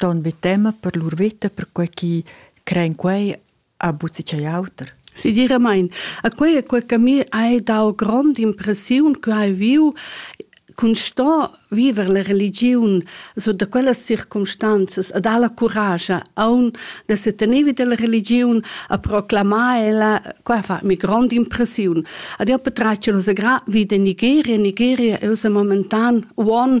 ston be tema per lur vita perquei che crein quei a buzi chei auter. Sicuramente. A quei è quel che mi hai dau grande impressione che hai viu con sto viver la religione so da quellas circumstanzas a dar la courage a un de se tenevi della religione a proclamare ella qua fa mi grande impressione ad io potrà ce lo gra vide Nigeria Nigeria è momentan one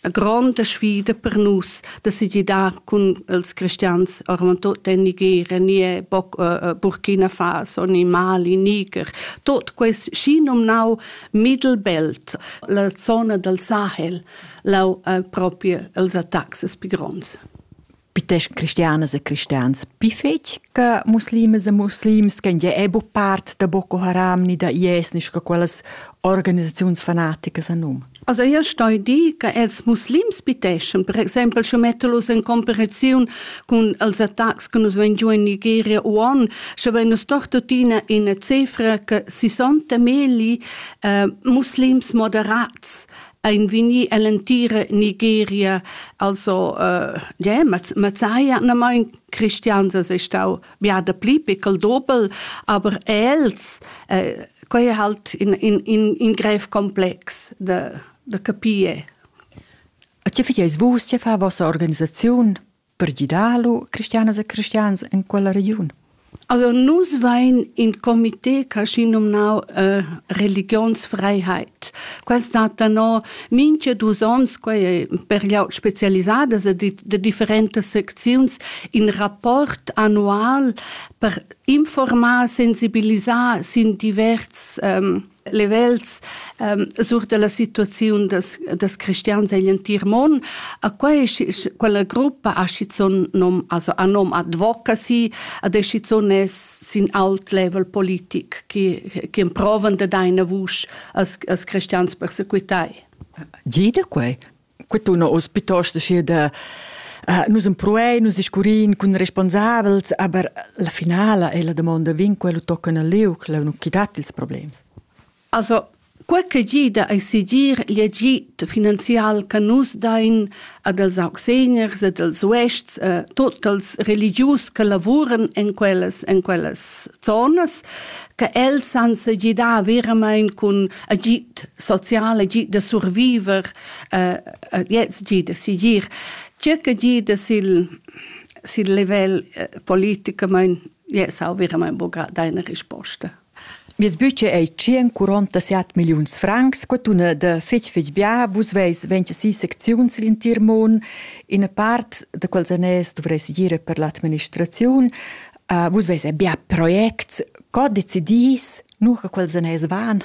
a gronda sfida per nus da segidar cun els cristians ormantut en Nigeria, nie boc, uh, Burkina Faso, ni Mali, Niger, tot quest și nomnau Mittelbelt, la zona del Sahel, lau uh, proprio els attacks pi gronds. Pitesc cristianas e cristians pi fetg che muslimas e muslims che ja è bu part da Boko Haram ni da IS ni sco quellas organisaziuns fanaticas a num. Also io stoi dir che els muslims piteschen, per exempel sche mettelos in comparaziun con els attacks che nus ven giù in Nigeria o an, sche ven nus doch tuttina in cifra che 60 meli uh, muslims moderats ein vegni ell'entira Nigeria. Also, äh, yeah, Mazzaya, na mein Christians è stau ja da pli pickel dobel, aber els, äh, quei è halt in, in, in, in grev komplex da, da capire. A tge fai vus, tge fa vossa organisaziun? Per gidar lu cristianas e cristians en quella regiun? Also nus vein in comité caschi nomnau äh, Religionsfreiheit. Quel stat danò minche dus ons, quei per glieud spezialisadas e de, de differentas secziuns, in rapport annual per informar, sensibilisar sin divers ähm, livels um, sur della situaziun des, des cristians egl entir mon. A quei, quella gruppa ha schizun nom, also ha nom advocacy, a decizun es sin alt level politik, che, che provan de deine vusch als, als cristians persequitai. Jede quei quetuna oz piuttost schi da Uh, nus empruein, nus iscurin cun responsabels, aber la finala è la domanda vin quello toccano al liuc, la non chi dat ils problems. Also, quel che gida ai sigir l'agit finanzial che nus dain ad els auxeniers ed als uests, eh, tot els religius che lavuren in quellas, in quellas zonas, che els san se gidar veramente con agit social, agit da surviver, uh, jetzt jeder sigir circa jeder sil sil level politiker mein yes auch wir mein boga deine risposta Mias budget ei 147 milliuns francs, quatuna da fetg fetg bia, vus veis 26 secziuns l'entir mon, ina part da quels anès dovreis gire per l'administraziun, uh, vus veis bia projects, co decidis, nu che quels anès van?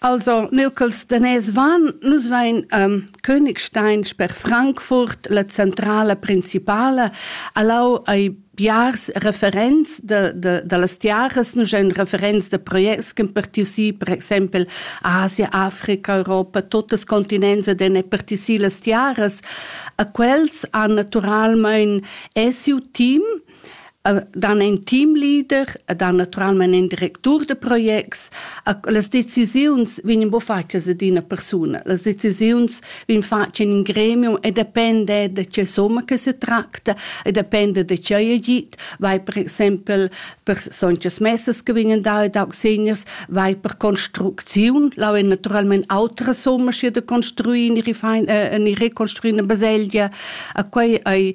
Also, neu ch'els daners van, nus vein ähm, Königstein sper Frankfurt, la centrala principala, allau ai biars referents de, de, de las tiaras, nus ein referents de projects che partiu si, per exempel Asia, Africa, Europa, totes continents ed ein partiu si las tiaras. A quels han naturalmein esiu team, dan ein Teamleader, dan naturalmein ein Direktur de projects. Las decisiuns vegnan bo fatgas ad ina persuna. Las decisiuns vegn fatg in in gremium e depende da che somma che se tracta e depende da che ei git. Vai per exempel per sonchas messas che vegnan da ed auxeniers, vai per construcziun, lau ein naturalmein autra somma sche de construir in ihre fein, äh, in ihre construir eine Baselgia. A quei ei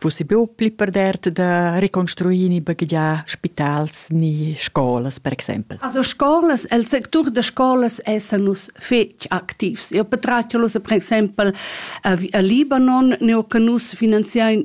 fussi buca pli perdert da reconstruir ni baghegiar spitals ni scolas, per exempel. Also scolas, el sectur de scolas essanus fetg activs. Io patratg per exempel a Libanon, neo che nus finanziain